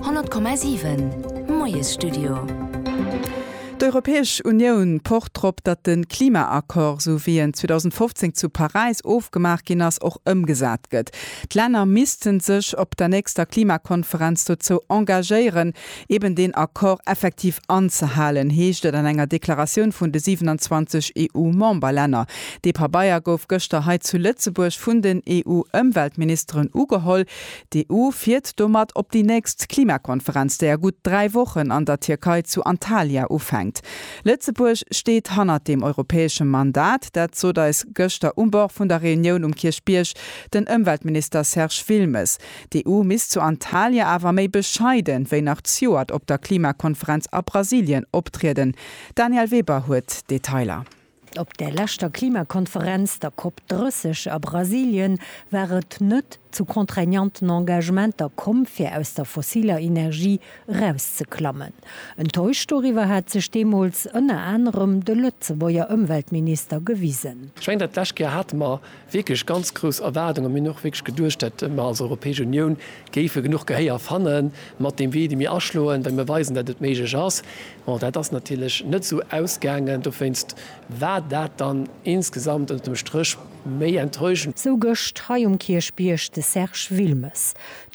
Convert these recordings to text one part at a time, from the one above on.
100,7 Moiesstudio. D'Europäesch Unioun pocht drop, datt de Klimaaccord, esou wéi en 2015 zu Paräis ofgemaach ginn ass, och ëmgesat gëtt. D'Länner misste sech op der nächster Klimakonferenz dozou engagéieren, eben deen Accord effektiv anzehalen, heescht et an enger Deklaratioun vun de 27 EU-Memberlänner. Dee Pabeier gouf gëschter hei zu Lëtzebuerg vun den EU-Ëmweltministeren ugeholl. D'EU fiert domat op déi nächst Klimakonferenz, déi a gutt dräi Wochen an der Tierkei zu Antalya ufänkt. Lëtzebuerg steet hannert deem europäesche Mandat. Dat sot eis gëschter um Bord vun der Reunioun um Kierchbierg den Ëmweltminister Serge Wilmes. D'EU misst zu Antalya awer méi bescheiden, wéi nach zejoert op der Klimakonferenz a Brasilien optrieden. D'Danièle Weber huet d'Detailer. Op der leschter Klimakonferenz, der Cop 30 a Brasilien, war et net zu contraignanten Engagementer komm, fir aus der fossiler Energie erauszeklammen. Enttäuscht doriwwer hat sech deemools ënner anerem de Lëtzebuerger Ëmweltminister gewisen. Ech mengen, dat lescht Kéier hate mer wierklech ganz grouss Erwaardung a mir hunn och wierklech geduecht, datt mer als Europäesch Unioun géife genuch Gehéier fanne mat deem Wee, dee mir aschloen, well mir weisen, datt et méiglech ass. Bon, dat ass natierlech net esou ausgaangen, dowéinst war dat dann insgesamt ënnert dem Stréch méi enttäuschend. Sou gëscht hei um Kierchbierg de Serge Wilmes.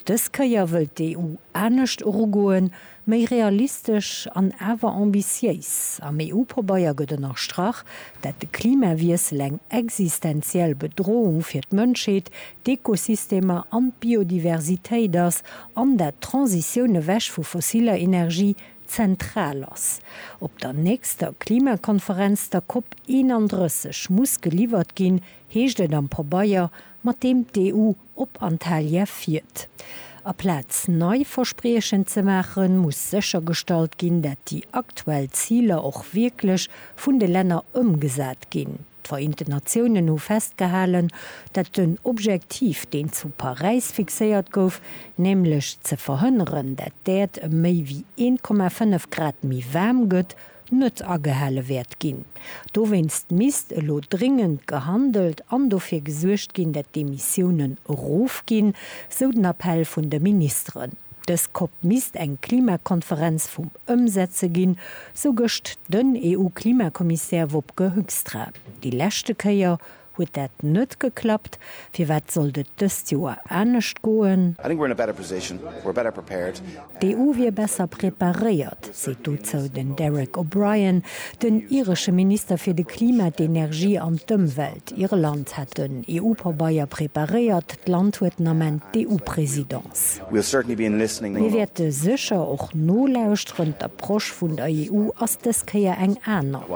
Dës Kéier wëllt d'EU anescht erugoen, Méi realistesch an awer ambitiéis. Am EU-Pabeier gëtt ënnerstrach, dat de Klimawiessel eng existenziell Bedroung fir d'Mënschheet, d'Ekosystemer an d'Biodiversitéit ass an dat d'Transitioun ewech vu fossiller Energie zentral ass. Op der nächster Klimakonferenz, der Cop 31, muss geliwwert ginn, heescht et am Pabeier, mat deem d'EU Op Antalya fiert. Aplaz nei Verspriechen ze maachen, muss séchergestallt ginn, dat déi aktuell Ziler och wierklech vun de Länner ëmgesat ginn. D'Vereenten Natiounen hu festgehalen, dat den Objektiv, deen zu Paräis fixéiert gouf, nämlech ze verhënneren, dat d'Äerd ëm méi wéi 1,5 Grad méi waarm gëtt, net agehale wäert ginn. Dowéinst misst elo dringend gehandelt an dofir gesuergt ginn, dat d'Emissiounen erofginn, sou den Appell vun de Ministeren. Dës Cop misst eng Klimakonferenz vum Ëmsetze ginn, sou gëscht den EU-Klimakommissär Wopke Hoekstra. Déi leschte Kéier Huet dat net geklappt? Firwat sollt et dëst Joer anescht goen? D'EU wier besser preparéiert, seet dozou den Derek O'Brien, den iresche Minister fir de Klima, d'Energie an d'Ëmwelt. Irland hätt den EU-Pabeier preparéiert, d'Land huet den Ament d'EU-Presidence. Mir wäerte sécher och nolauschteren, d'Approche vun der EU ass dës Kéier eng aner.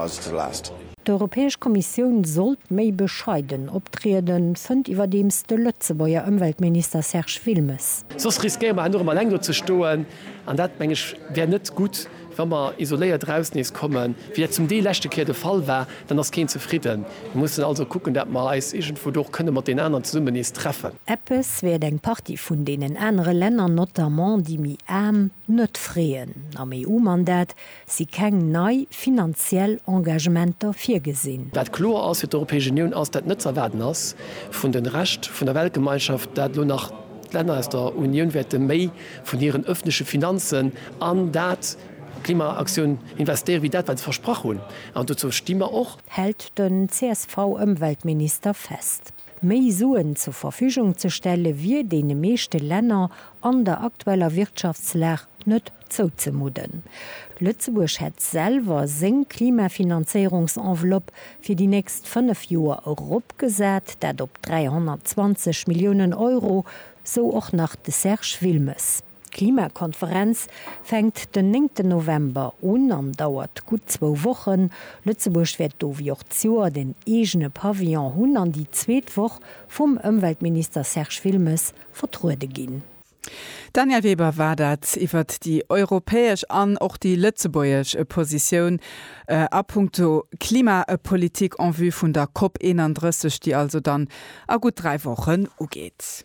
D'Europäesch Kommissioun sollt méi bescheiden optrieden, fënnt iwwerdeems de Lëtzebuerger Ëmweltminister Serge Wilmes. Soss riskéiere mer herno erëm eleng do ze stoen, an dat, meng ech, wär net gutt. Wa mer isoléiert eraus nees kommen, wéi dat zum Deel leschte Kéier de Fall war, dann ass keen zefridden. Mir mussen also kucken, dat mer eis iergendwou do och kënne mat deenen aneren zesummen nees treffen. Eppes wäert eng Partie vun deenen anere Länner, notamment déi méi aarm, net freeën. Am EU-Mandat si keng nei finanziell Engagementer virgesinn. Wat kloer ass fir d'Europäesch Unioun, ass dat net ze erwaarden ass vun de Rescht vun der Weltgemeinschaft, dat elo nach d'Länner aus der Unioun wäerte méi vun hiren öffentleche Finanzen an dat, d'Klimaaktioun, investéiere wéi dat wat se versprach hunn. An dozou sti mer och. Hält den CSV-Ëmweltminister fest. Méi Suen zur Verfügung ze stelle wier deene meeschte Länner an der aktueller Wirtschaftslag net Zouzemudden. Lëtzebuerg hätt selwer seng Klimafinanzéierungsenveloppe fir déi nächst 5 Joer eropgesat, dat op 320 Milliounen Euro, sou och nach de Serge Wilmes. D'Klimakonferenz fänkt den néngten November un an dauert gutt zwou Wochen. Lëtzebuerg wäert do wéi och d'Joert en eegene Pavillon hunn an déi zweet Woch vum Ëmweltminister Serge Wilmes vertruede ginn. Danièle Weber war dat iwwert déi europäesch an och déi lëtzebuergesch Positioun a punkto Klimapolitik en vue vun der COP 31, déi also dann a gutt dräi Wochen ugeet.